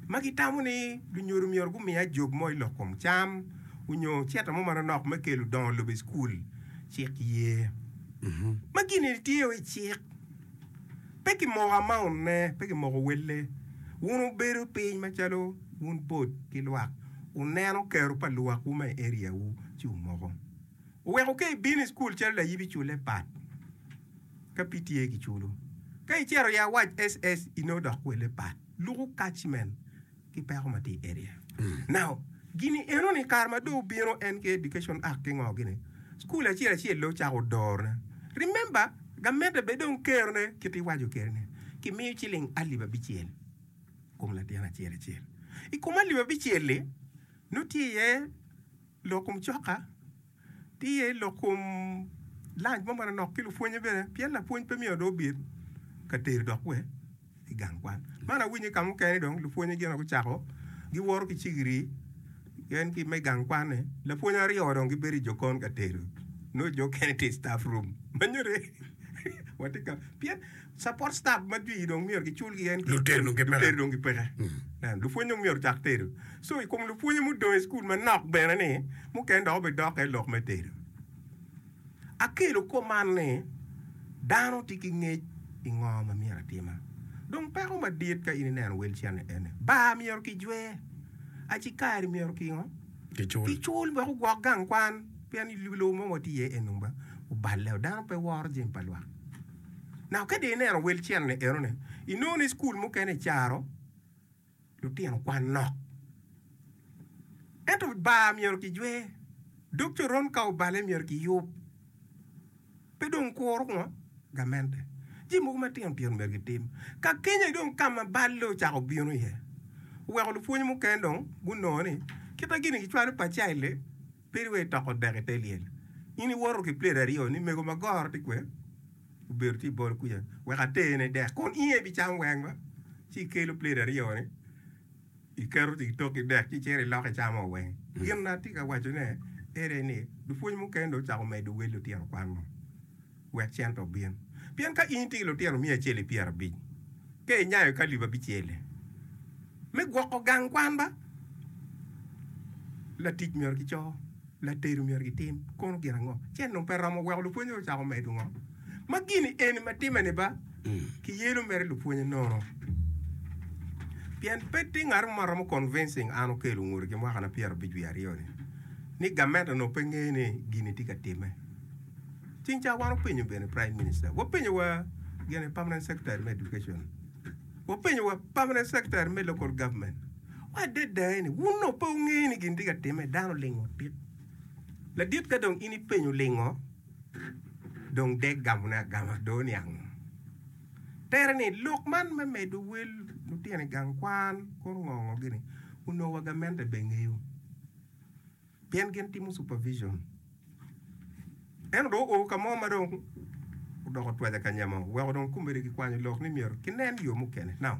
ma gitamo ni lunyodo myero gumi ajog mo i lok kom cam onyo cente mo manonok me kelo dongo lobo i cukul, cik ye ma gini tye o i cik. Pe kimoko amaunne, pe kimoko welle. Wun wubedo piny macalo wun bot ki lwak, wuneno kero pa luwakwu ma i area wu ci wumoko. Wuweko ka ibino i cukul calo layib iculle pat. Ka pi tye ki culu, ka i cero ya wac SS i no dok kwele pat luku kac men ki peko ma ti area. Now, gini eno ni kare ma do obino en ki Education Act ki ngo gini, school acel acel lo cako door ne. Remember, gamente be dong kero ne kit i waco keri ni, ki miyo ciling alip abicel kom latin acel acel. I kom alip abicel li, no tye iye lok kom coka, Tye lok kom lunch mo manonok ki lupwonye bene pien lapwony pe miyo do obit ka tedo dok we i gang kwan. Man awinyo i kamukene dong lupwonye gin gucako gi woro ki cigiri gen ki me gang kwan ne lapwony aryo dong gibedo i jokon ka tedo no jo kene tye i staff room manyode watye ka pien Support staff ma jwi dong myero gicul gien ki. Luteri dong gipeke. Luteri dong gipeke. Nen, lupwony dong myero cak tedo. So, i kom lupwonye mudong i school manok bene ni, mukene dok obe dokke i lok me tedo. Akelo kop man ni, dano ti ki ngec i ngo ma myero atima. Dong peko madit ka in ineno wel cene ene, bar myero ki jwe, aci kari myero ki ngo? Ki cul. Ki cul wek ogwok gang kwan, pien i lobo mo ma wati iye eni dong ba oballe o, dano pe woro jemi pa lwak. Naka ka dong ineno wel cente-ni enoni, inongo ni cukul mukene kicaro lutino kwan nok. Ento bar myero kijwe, dog coron ka obale myero kiyub. Pe dong kuro ngo gamente. Jami mogo matino tino myero gitim. Ka kenya dong ka ma balle ocako bino iye, oweko lupwony mukene dong gunongo ni kit ma gin-ni gicwalo pacci aye le. Peri wai toko dek i te lyel. In iwoto ki plate aryo ni mego ma goro ti kwe obedo ti bol kuja wek atene dek kun inge i bi cam weng ma ci ikelo plate aryo ni iketo ti tok ki dek ci icito iloko icamo weng. Gin na ti ka waco ne ere ni lupwony mukene dong ocako medo wel lutino kwan mo. wek cente obin. Pien ka in itye ki lutino miya acel i pyerabic, ka inyayo ki alip abicel-li me gwoko gang kwan ba, latic myero gico, latedo myero gitim kono gin ango? Ci en dong pe romo weko lupwonnyene ocako medo ngo? Ma gini eni ma timme-ni ba kiyelo mere i lupwonnye nono. Pien pe tye ngat mo ma romo convincing an okello ngute ki mwaka na pyerabic wiye aryo-ni ni gamente onongo pe ngeyo ni gini tye ka timme. Cing ca wan openyo bene Prime Minister, wapenyo wa gene Permanent Secretary me Education, wapenyo wa Permanent Secretary me Local Government, wade daye ni wun dong pe wungeyo ni gin tye ka timme, dano olingo otit. Ladit ka dong in ipenyo lingo, dong dek gamone agama, dong oniango. Tere ni lok man me medo wel lutino i gang kwan, kor ngongo gini, onongo wa gamente be ngeyo. Pien gin timo supervision. Ento dong oo ka mo ma dong odoko twaja ka nya mo, weko dong komedi gikwanyo lok ni myero kinen yo mukene. Now,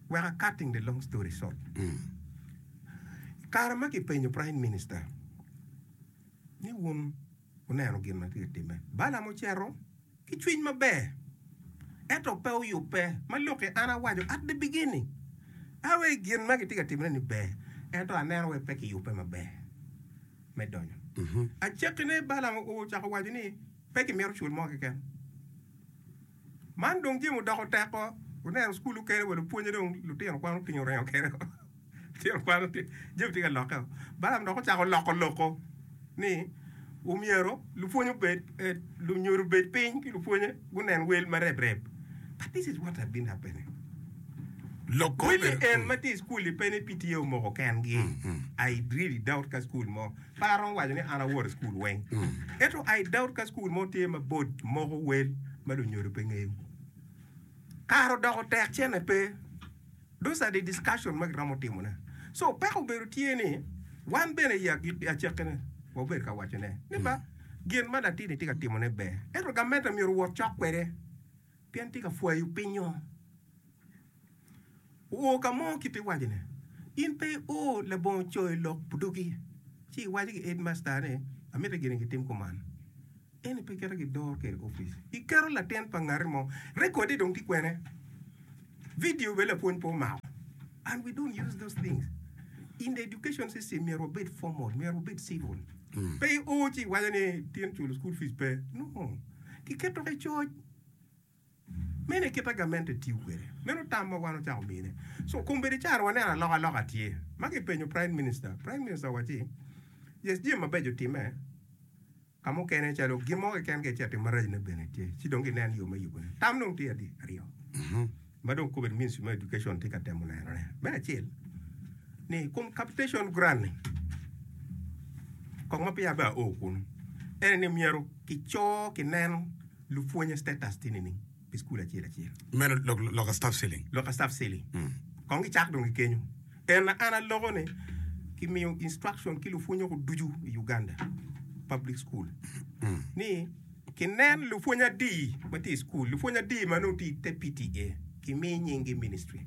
weka cutting the long story short, i kare ma kipenyo Prime Minister ni wun Wuneno gin ma tye ka timme. Balaam ocito ki cwiny maber, ento pe oyubbe. Ma lukke, an awaco, At the beginning, a wai gin ma kitye ka timme-ni ber, ento aneno wai pe kiyubbe maber me donyo. Acakkine, Balaam ocako waco ni, Pe kimito cul mo keken. Man dong Jim odoko tekko oneno cukul okene wa lupwonye dong lutino kwan otingo oringo kene o lutino kwan otingo Jim tye ka lokke o Balam dok ocako loko loko ni omyero lupwonye obed eh, lunyodo obed piny ki lupwonye gunen wel ma reb reb but this is what have been happening Loko Kweli bedo en kulu. ma tye i cukul-li pe ni pi tye omoko kengi. I really doubt ka cukul mo Pe aromo waco ni an awoto i cukul weng. Ento I doubt ka cukul mo tye ma board moko wel ma lunyodo pe ngeyo. Kare odoko tek cene pe. Those are the discussion ma giromo timo ne. So peko obedo tye ni wan bene I agik I acake ne wabedo ka waco ne ni ba gin ma latin ni tye ka timo ne ber ento gamente myero owot cok kwede pien tye ka pwayo piny o. Oo ka mo kit ti waco ne in pe i o labongo coyo lok pudugi ci i waco ki headmaster ni amiti gini ki tim kuman eni pe kite ki doro kede office i keto latin pa ngati mo record e dong ti kwene video bene lapwony pe omako and we don't use those things in the education system myero wabed formal myero wabed civil mm. pe i o ci i waco ni tin culo school fees pe no ki keto ki coc Meno e kit a gamente tiyo kwede. Meno tam ma wan ocako mine. So, kombeddi caro waneno alokaloka tye. Ma kipenyo Prime Minister, Prime Minister owacci, Yes, jami mabeco timme. Ka mukene calo gin mo keken ka icito maracne bene tye. Ci dong ginen yo me yubone. Tam dong tye adi? Aryo. Ma dong kobedi Ministry me Education tye ka temo nenone. Me acel, ni i kom capitation grant-ni, kong ma peya abea oo kunu, ene ni myero kico, kineno, Lupwonye status tye nining pi school acel acel? Medo loka staff ceiling. Loka staff ceiling. Kong gicak dong ki kenyo. En an aloko ni ki miyo instruction ki lupwonye ko ducu i Uganda public school ni ki nen lupwonye adi ma tye i school, lupwonye adi ma nongo tye i te PTA ki mi nying gi ministry.